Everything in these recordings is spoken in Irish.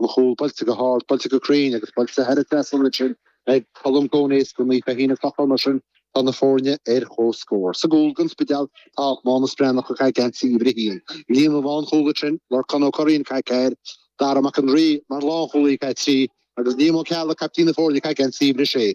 an chúl buailte go hard, buailte go cruinn agus buailte thar an trasnán ansin ag Colm Coneys do Naomh Feichín An Clochán mar sin tá na foirne ar chomhscór. Sa gcúl don Spidéal tá Mánus Breathnach ag caith geansaí uimhir a haon. Líne lánchúil ansin, Lorcán Ó Curraoin caith ceathair, Dara Mac an Rí mar lánchúlaí caith trí agus Liam Ó Ceallaigh, caiptín na foirne, caith geansaí uimhir a sé.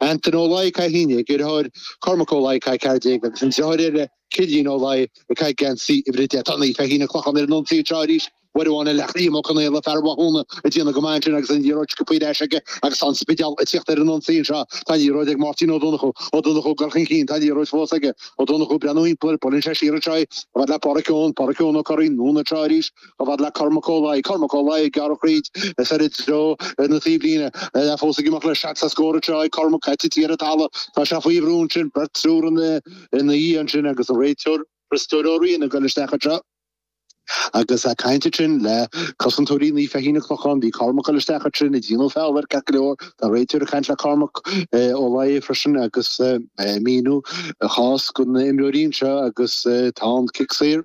Antaine Ó Laoi caith 11, a dhriotháir Cormac Ó Laoi caith 14, agus an driotháir eile, Cillian Ó Laoi, ag caith geansaí uimhir a deich. Tá Naomh Feichín An Clochán ar an ionsaí anseo arís, uair amháin le Liam Ó Conaola, fear Mhathúna, ag déanamh go maith ansin agus an liathróid sciobtha ar ais aige agus tá An Spidéal ag tíocht ar an ionsaí anseo. Tá an liathróid ag Máirtín Ó Donnchú. Ó Donnchú ag gul chun cinn. Tá an liathróid fós aige. Ó Donnchú ag breathnú thimpeall air. Buaileann sé siar anseo í. A fhad le Páraic Eoin. Páraic Eoin Ó Curraoin, anonn anseo arís. A fhad le Cormac Ó Laoi, Cormac Ó Laoi, gearradh tríd is ar i dtreo na taobhlíne, fós ag imeacht le seacht sa scór is seo ag Cormac ag titim ar an talamh. Tá sé faoi bhrú ansin, beirt triúr ina dhiaidh ansin agus an réiteoir, Criostóir Ó Riain ag gul isteach anseo agus ag caint ansin le cosantóirí Naomh Feichín An Clochán. Bhí Cormac ag gul isteach ansin ag déanamh feall air ceart go leor. Tá an réiteoir ag caint le Cormac Ó Laoi freisin agus ag míniú a chás do na himreoirí anseo agus tá an cic saor.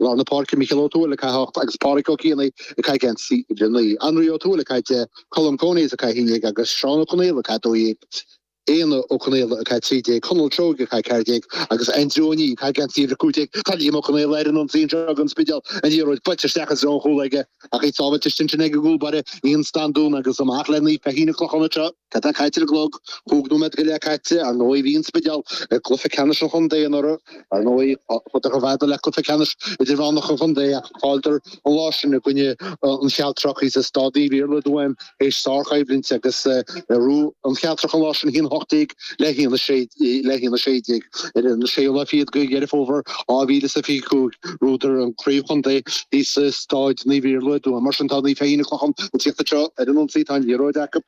Lár na Páirce, Micheál Ó Tuathail ag caith 8 agus Páraic Ó Cianaigh ag caith geansaí uimhir 9. Anraí Ó Tuathail ag caith 10, Colm Coneys ag caith 11 agus Seán Ó Conaola ag caith 12. Éanna Ó Conaola ag caith 13, Conall Seoige ag caith 14 agus Aindriú Ó Niaidh ag caith geansaí uimhir 15. Tá Liam Ó Conaola ar an ionsaí anseo ag An Spidéal, an liathróid buailte isteach i dtreo an chúil aige ach í sábháilte ansin ag an gcúlbáire Ian Standún agus amach le Naomh Feichín An Clochán anseo. Céard atá caite ar an gclog? Cúig nóiméad go leith caite, ar ndóigh. Bhí an Spidéal ag cluiche ceannais an chontae anuraidh, ar ndóigh. Bhíodar i gcluiche ceannais idirmheánach an chontae ach chailleadar an lá sin i gcoinne an Chealtrach thíos i Staid Naomh Iarlaith i dTuaim théis sárchoimhlint agus bhuaigh an Chealtrach an lá sin. 1-18 le 1-16 ar an 6ú lá fichead de Dheireadh Fómhair 2025. Bhuadar an craobh chontae thíos i Staid Naomh Iarlaith i dTuaim. Mar sin tá Naomh Feichín An Clochán ag tíocht anseo ar an ionsaí. Tá an liathróid acu.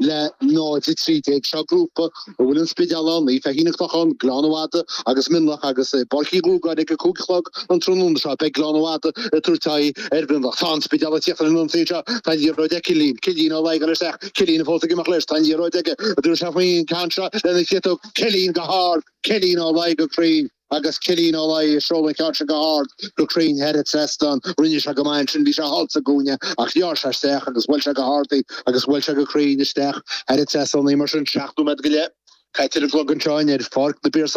le 0-13 Seo grúpa a bhfuil an Spidéal ann, Naomh Feichín An Clochán, Gleann na Madadh agus Mionlach agus i bPáirc Uí Dhúgáin ag a cúig a chlog an tráthnóna seo beidh Gleann na Madadh ag tabhairt aghaidh ar Mhionlach. Tá an Spidéal ag tíocht ar an ionsaí anseo, tá liathróid ag Cillian, Cillian Ó Laoi ag gul isteach, Cillian fós ag imeacht leis, tá an liathróid aige, an dtabharfaidh sé faoin gceann seo lena chiotóg, Cillian go hard, Cillian Ó Laoi go cruinn. Agus Cillian Ó Laoi ag seoladh an cheann sin go hard go cruinn thar an trasnán, rinne sé go maith ansin, bhí sé thall sa gcúinne ach ghearr sé isteach agus bhuail sé go hard í agus bhuail sé go cruinn isteach thar an trasnán í mar sin seacht nóiméad go leith caite ar an gclog anseo in, ar, Pháirc na bPiarsach.